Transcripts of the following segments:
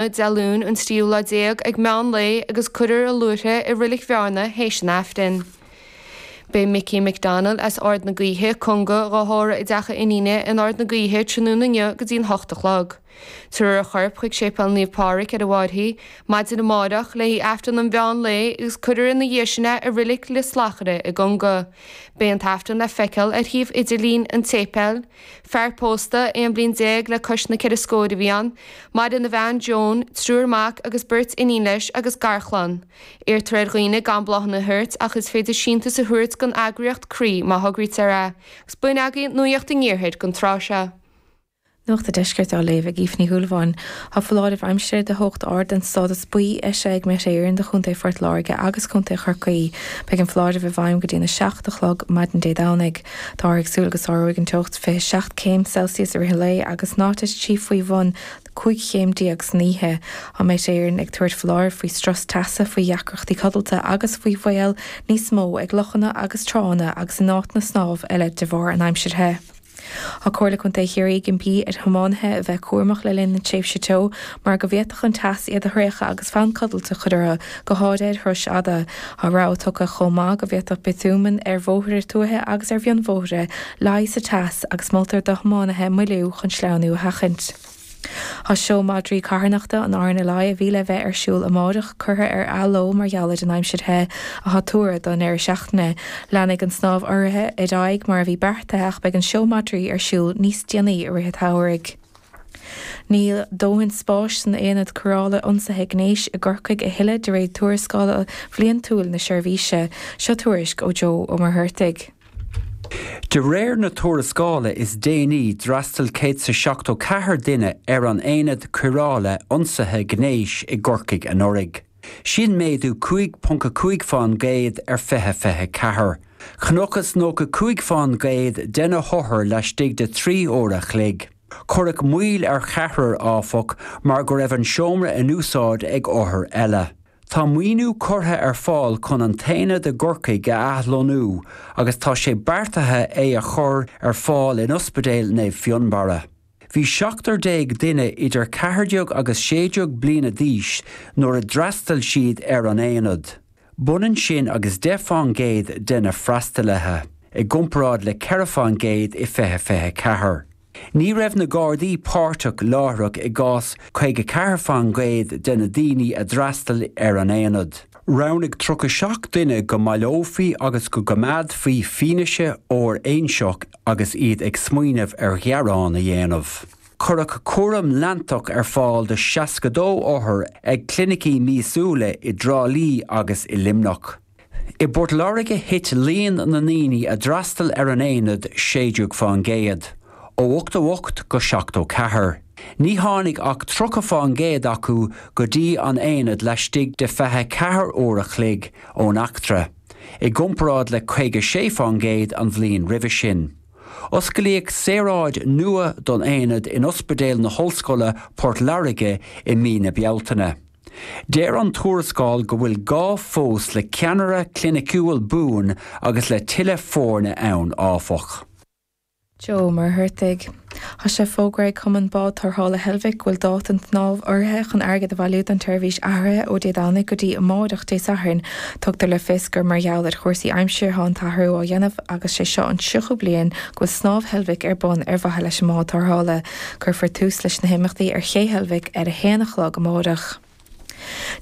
Dé Luain an Tríú Lá Déag ag meán lae agus cuirfear a luaithre i Roilic Bhearna théis an Aifrinn. Beidh Mickey McDonald as Ard na Gaoithe, Conga, dhá thórramh i dteach a iníne in Ard na Gaoithe tráthnóna inniu go dtí'n hocht a chlog. Tabharfar a chorp chuig Séipéal Naomh Pádraig ar an bPartraí, maidin amáireach, léi Aifreann an mheán lae agus cuirfear ina dhiaidh sin é i Roilic Lios Lachna i gConga. Beidh an tAifreann le feiceáil ar shuíomh idirlín an tséipéil. Fear pósta, 11 bliain le cois na gceithre scóir, a bhí ann. Maireann a bhean, Joan, triúr mac agus beirt iníon leis agus garchlann. Iarrtar ar dhaoine gan bláthanna a thabhairt ach is féidir síntiús a thabhairt don eagraíocht Croí má thograítear é. Agus b'in agaibh nuaíocht an iarthair don tráth seo. Nuacht an Deiscirt á léamh ag Aoife Ní Shúilleabháin. Tá foláireamh aimsire de theocht ard den stádas buí eisithe ag Met Éireann do Chontae Phort Láirge agus Contae Chorcaí. Beidh an foláireamh i bhfeidhm go dtí'n 7 a chlog maidin Dé Domhnaigh. Táthar ag súil go sáróidh an teocht 27 céim Celsius i rith an lae agus nach dtitfidh sí faoi bhun 15 chéim san oíche. Tá Met Éireann ag tabhairt foláirimh faoi strus teasa, faoi dheacrachtaí codlata agus faoi bhaol níos mó ag lochanna agus tránna agus in áiteanna snámha eile de bharr an aimsir the. Tá Comhairle Contae Chiarraí ag impí ar thiománaithe a bheith cúramach le linn na tréimhse teo mar go bhféadfadh an teas iad a thraochadh agus fonn codlata a chur orthu, go háirithe ar thurais fhada. Tá rabhadh tugtha chomh maith go bhféadfadh biotúman ar bhóithre tuaithe agus ar mhionbhóithre leá sa teas agus moltar do thiománaithe moilliú chun sleamhnú a sheachaint. Tá Seó Madraí Carthanachta an RNLI a bhí le bheith ar siúl amárach curtha ar athló mar gheall ar an aimsir the atá tuartha don deireadh seachtaine. Leanfaidh an snámh urraithe ar aghaidh mar a bhí beartaithe ach beidh an Seó Madraí ar siúl níos déanaí i rith an tsamhraidh. Níl dóthain spáis san Aonad Cóireála Ionsaithe Gnéis i gCorcaigh a thuilleadh de réir tuarascála bhliantúil na seirbhíse. Seo tuairisc ó Joe Ó Muircheartaigh. De réir na tuarascála is déanaí d'fhreastail 174 duine ar an Aonad Cóireála Ionsaithe Gnéis i gCorcaigh anuraidh. Sin méadú 5.5 fán gcéad ar 20 24. Chonacthas 95 fán gcéad de na hothair laistigh de thrí uair a chloig. Cuireadh moill ar cheathrar, áfach, mar go raibh an seomra in úsáid ag othar eile. Tá maoiniú curtha ar fáil chun an t-aonad i gCorcaigh a athlonnú agus tá sé beartaithe é a chur ar fáil in Ospidéal Naomh Fionnbarra. Bhí seachtar déag duine idir ceathairdheag agus sédeag bliana d'aois nuair a d'fhreastail siad ar an aonad. B'ionann sin agus deich fán gcéad de na freastalaithe, i gcomparáid le ceithre fán gcéad i fiche fiche ceathair. Ní raibh na Gardaí páirteach láithreach i gcás caoga ceathair fán gcéad de na daoine a d'fhreastail ar an aonad. Roghnaigh tríocha seacht duine go mbaileofaí agus go gcoimeádfaí fianaise fhóiréinseach agus iad ag smaoineamh ar ghearán a dhéanamh. Cuireadh cúram leantach ar fáil do 62 othar ag clinicí míosúla i dTrá Lí agus i Luimneach. I bPort Láirge thit líon na ndaoine a d'fhreastail ar an aonad 16 fán gcéad, ó 88 go 74. Ní tháinig ach 30 fán gcéad acu go dtí an aonad laistigh de 24 uair a chloig ón eachtra. i gcomparáid le 56 fán gcéad an bhliain roimhe sin. Osclaíodh saoráid nua don aonad in Ospidéal na hOllscoile, Port Láirge, i mí na Bealtaine. Deir an tuarascáil go bhfuil gá fós le ceannaire cliniciúil buan agus le tuilleadh foirne ann, áfach. Joe Muircheartaigh. Tá sé fógartha ag Cumann Bád Tarrthála Heilbhic go bhfuil dáta an tsnámha urraithe chun airgead a bhailiú don tseirbhís athraithe ó Dé Domhnaigh go dtí amáireach Dé Sathairn. Tugtar le fios gur mar gheall ar chúrsaí aimsire atá an t-athrú á dhéanamh agus sé seo an tríochú bliain go bhfuil Snámh Heilbhic ar bun ar mhaithe leis an mbád tarrthála. Cuirfear tús leis na himeachtaí ar Ché Heilbhic ar a haon a chlog amáireach.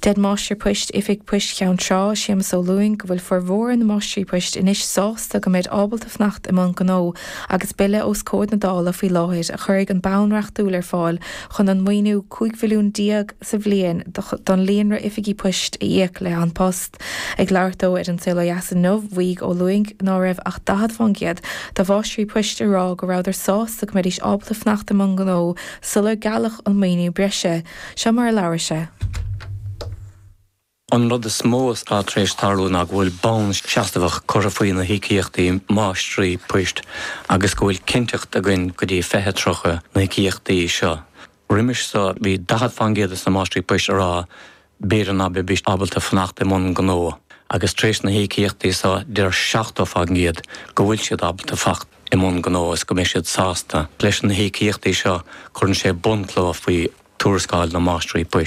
Deir Máistir Poist, Oifig Poist Cheann Trá, Séamus Ó Lúing, go bhfuil formhór na máistrí poist anois sásta go mbeid ábalta fanacht i mbun gnó agus Bille os comhair na Dála faoi láthair a chuirfidh an bonn reachtúil ar fáil chun an maoiniú cúig mhilliún déag sa bhliain don líonra oifigí poist a íoc le An Post ag labhairt dó ar An Saol Ó Dheas inniu mhaígh Ó Lúing ná raibh ach 40% de mháistrí poist a rá go rabhadar sásta go mbeidís ábalta fanacht i mbun gnó sular gealladh an maoiniú breise Seo mar a labhair sé. An rud is mó atá tar éis tarlú ná go bhfuil bonn seasmhach curtha faoi na híocaíochtaí máistrí poist agus go bhfuil cinnteacht againn go dtí 2030 na híocaíochtaí seo. Roimis seo bhí 40 fán gcéad de na máistrí poist a rá b'fhéidir ná beidís ábalta fanacht i mbun gnó agus tar éis na híocaíochtaí seo deir 70 fán gcéad go bhfuil siad ábalta fanacht. i mbun gnó is go mbeidh siad sásta leis na híocaíochtaí seo, cuireann sé bunchloch faoi Tuarascáil na Máistrí Poist.